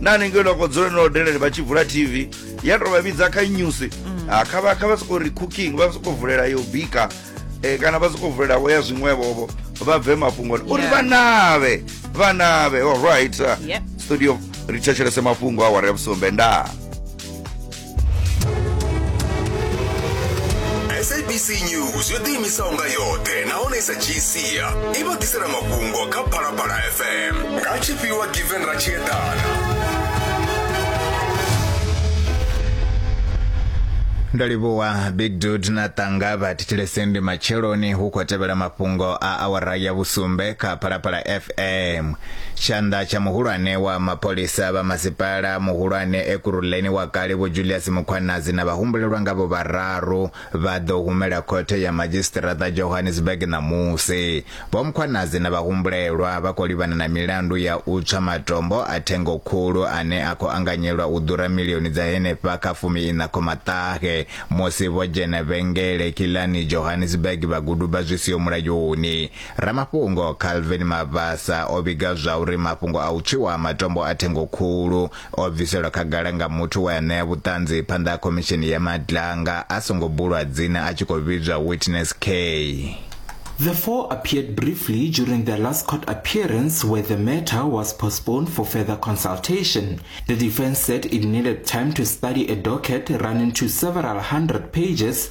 na hanengei no ko dzule no delele vha tshi vula tv ya tou vha vhidza kha news mm. ah, kha vha kha vha sokou ri cooking vha sokou vulela yo bika eh, kana vha sokou vulela vho ya zwiṅwevhovho vha bve mafhungoni uri vha navhe vha navhe all right studio ri thetshelese mafhungo a wari ya vhusumbe ndaa sabc news yo ḓiimisaho nga yoṱhe nahone sa gcia i vha ḓisela mafhungo kha phalaphala fm nga tshifhiwa given ra tshi eḓana ndo livhuwa big dud na ṱanga vha thetshelesende matsheloni hu khou tevhela mafhungo a awara ya vhusumbe kha phalaphala f Em, tshanḓa tsha muhulwane wa mapholisa vha masipala muhulwane Ekurhuleni wa kale Vho Julius Mukhwanazi na vhahumbulelwa ngavho vhararu vha ḓo humela khothe ya madzhisiṱiraṱa Johannesburg ṋamusi. Vho Mukhwanazi na vhahumbulelwa vha khou livhana na milandu ya u tswa matombo a thengo khulu ane a khou anganyelwa u ḓura milioni dza henefha kha fumi iṋa khoma ṱahe musi vho dzhena vhengele khilani Johannesburg vha guduba zwi siho mulayoni. Ramafhungo Calvin Mabasa o vhiga zwauri mafhungo a u tswiwa ha matombo a thengo khulu o bviselwa khagala nga muthu we a ṋea vhuṱanzi phanḓa ha khomishini ya Madlanga a songo bulwa dzina a tshi khou vhidzwa Witness K. The four appeared briefly during their last court appearance where the matter was postponed for further consultation. The defense said it needed time to study a docket running to several hundred pages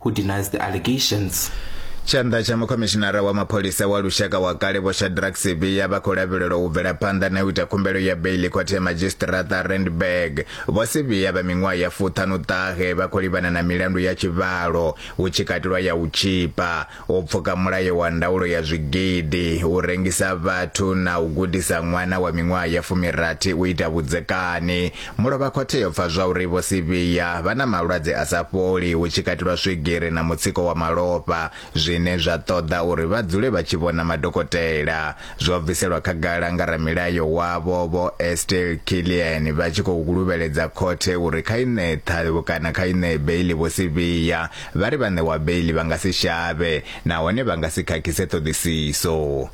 who denies the allegations. tshanḓa tsha mukhomishinara wa mapholisa wa lushaka wa kale vho shadrack sibiya vha khou lavhelelwa u bvela phanḓa na u ita khumbelo ya beili khothe ya madzhisiṱiraṱa randburg vho sibiya vha miṅwaha ya fuṱhanu ṱahe vha khou livhana na milandu ya tshivhalo hu tshi katelwa ya u tshipa u pfuka mulayo wa ndaulo ya zwigidi u rengisa vhathu na u gudisa ṅwana wa miṅwaha ya fumirathi u ita vhudzekani Mulovhakhothe yo pfa zwauri Vho Sibiya vha na malwadze a sa fholi hu tshi katelwa swigiri na mutsiko wa malofha zwine zwa ṱoḓa uri vha dzule vha tshi vhona madokotela. Zwo bviselwa khagala nga ramilayo wavho Vho Estelle Killian vha tshi khou luvheledza khothe uri kha i ṋee ṱhavho kana kha i ṋee beiḽi Vho Sibiya. Vha ri vha ṋewa beiḽi vha nga si shavhe nahone vha nga si khakhise ṱhoḓisiso.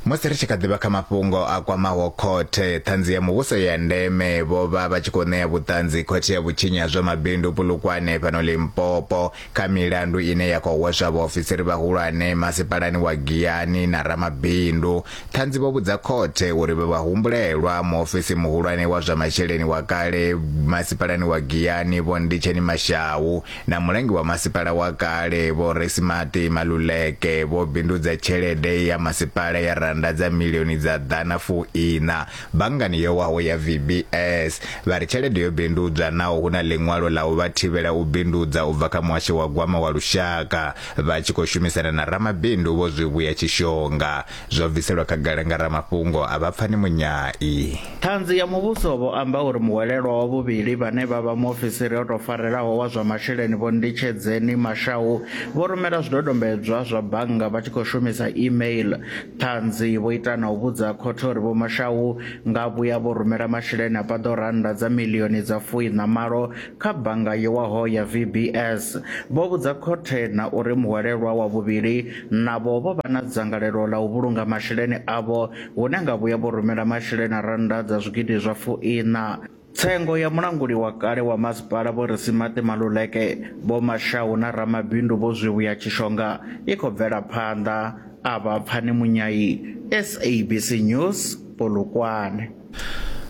Musi ri tshi kha ḓivha kha mafhungo a kwamaho khothe, Ṱhanzi ya Muvhuso ya ndeme vho vha vha tshi khou ṋea vhuṱanzi khothe ya vhutshinyi ha zwa mabindu Polokwane fhano Limpopo kha milandu ine ya khou hweswa vhaofisiri vhahulwane masipalani wa Giyani na ramabindu. Ṱhanzi vho vhudza khothe uri vhe vhahumbulelwa muofisi muhulwane wa zwa masheleni wa kale masipalani wa Giyani Vho Nditsheni Mashau na mulangi wa masipala wa kale vho Resimati Maluleke vho bindudza tshelede ya masipala ya rannda dza milioni dza ḓana fu ina banngani yo waho ya VBS vha ri tshelede yo bindudzwa naho hu na ḽiṅwalo ḽa u vha thivhela u bindudza u bva kha muhasho wa gwama wa lushaka vha tshi khou shumisana na ramabindu vho Zwivhuya Tshishonga zwo bviselwa khagala nga ramafhungo a vha pfani munyai. Ṱhanzi ya Muvhuso vho amba uri muhwelelwa wa vhuvhili vhane vha vha muofisiri o tou farelaho wa zwa masheleni Vho Nditshedzeni Mashau vho rumela zwidodombedzwa zwa bannga vha tshi khou shumisa e-mail. Ṱhanzi vho ita na u vhudza khothe uri Vho Mashau nga vhuya vho rumela masheleni a paḓaho rannda dza miḽioni dza fuiṋa malo kha bannga yo waho ya VBS, vho vhudza khothe na uri muhwelelwa wa vhuvhili navho vho vha na dzangalelo ḽa u vhulunga masheleni avho hune nga vhuya vho rumela masheleni a rannda dza zwigidi zwa fuiṋa tsengo ya mulanguli wa kale wa masipala Vho Risimaṱi Maluleke, Vho Mashau na ramabindu Vho Zwivhuya Tshishonga i khou bvela phanḓa. A vha Pfani Munyayi, SABC News, Polokwane.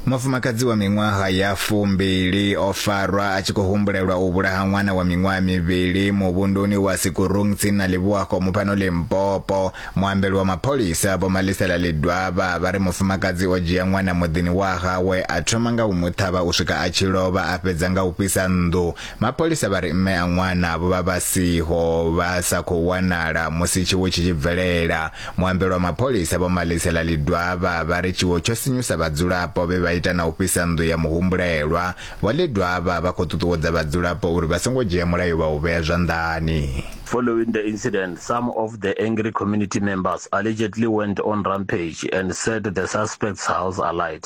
Mufumakadzi wa miṅwaha ya fumbili o farwa a tshi khou humbulelwa u vhulaha ṅwana wa miṅwaha mivhili muvhunduni wa Sikurung tsini na Leboakgomo fhano Limpopo. Muambeli wa mapholisa Vho Malisela Ledwaba vha ri mufumakadzi o dzhia ṅwana muḓini wa hawe a thoma nga u mu ṱhavha u swika a tshi lovha a fhedza nga u fhisa nnḓu. Mapholisa vha ri mme a ṅwana vho vha vha siho vha sa khou wanala musi tshiwo tshi tshi bvelela. Muambeli wa mapholisa Vho Malisela Ledwaba vha ri tshiwo tsho sinyusa vhadzulapo vhe vha ita na u fhisa nnḓu ya muhumbulelwa. Vho Ledwaba vha khou ṱuṱuwedza vhadzulapo uri vha songo dzhia mulayo vha u vhea zwanḓani. Following the incident, some of the angry community members allegedly went on rampage and set the suspect's house alight.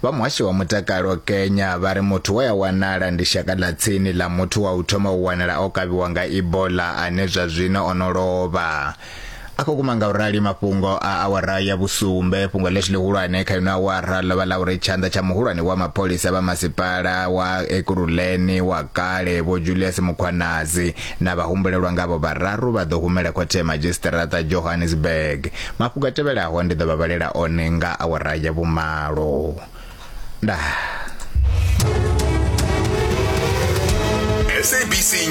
Vha muhasho wa mutakalo Kenya vha ri muthu we a wanala ndi shaka ḽa tsini ḽa muthu wa u thoma u wanala o kavhiwa nga Ebola ane zwa zwino o no lovha. A khou kuma nga u rali mafhungo a awara ya vhusumbe fhungo ḽeshu ḽihulwane kha ino awara ḽo vha ḽa uri tshanḓa tsha muhulwane wa mapholisa vha masipala wa Ekurhuleni wa kale Vho Julius Mukhwanazi Na vhahumbulelwa ngavho vhararu vha ḓo humela khothe ya madzhisiṱiraṱa Johannesburg. Mafhungo a tevhelaho ndi ḓo vha vhalela one nga awara ya vhumalo. Ndaa. SABC News.